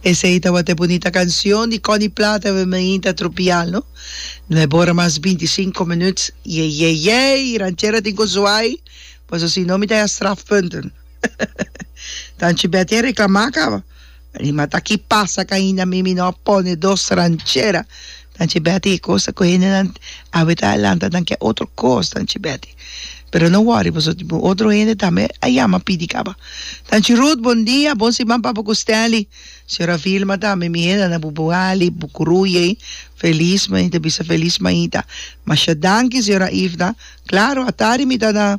Esei tabata e bunita cancion di Connie Plata Ven me hinta a tropial no No e bora mas binti sinku minuut Yeyeyey Ranchera tin cu zuai Paso si no mi ta ya strafpunten Tanchi Betty a reclama caba Rimata aki pasa ca ainda mi mi no a pone dos ranchera Nan che Betty e cos ta coge hendenan awe ta alanta nan ke otro cos nan che Betty pero no worry boso tin otro hende tambe a yama pidi caba nan che Ruth bon dia bon siman papá cu Stanley señora Vilma tambe mi hende nan bubo hali bu gruye feliz me ta bisa feliz maita masha danki señora Ifda claro atari mi ta na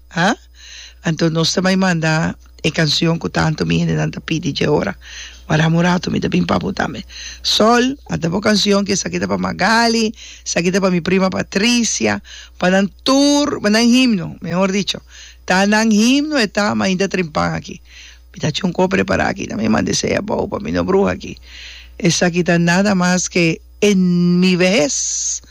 A? Anto nos ta bai manda e cancion cu tanto mi hendenan ta pidi dje ora. Waram un rato, mi ta bin pa bo tambe. Sol, a ta bo cancion ki esaki ta pa Magali, esaki ta pa mi prima Patricia, pa nan tur, pa nan himno, mehor dicho. Ta nan himno e ta, mainta trimpan aki. Mi ta chunco prepara aki tambe, mi manda esey abou pa mi, no bruha aki. Esaki ta nada mas ke en mi vehes.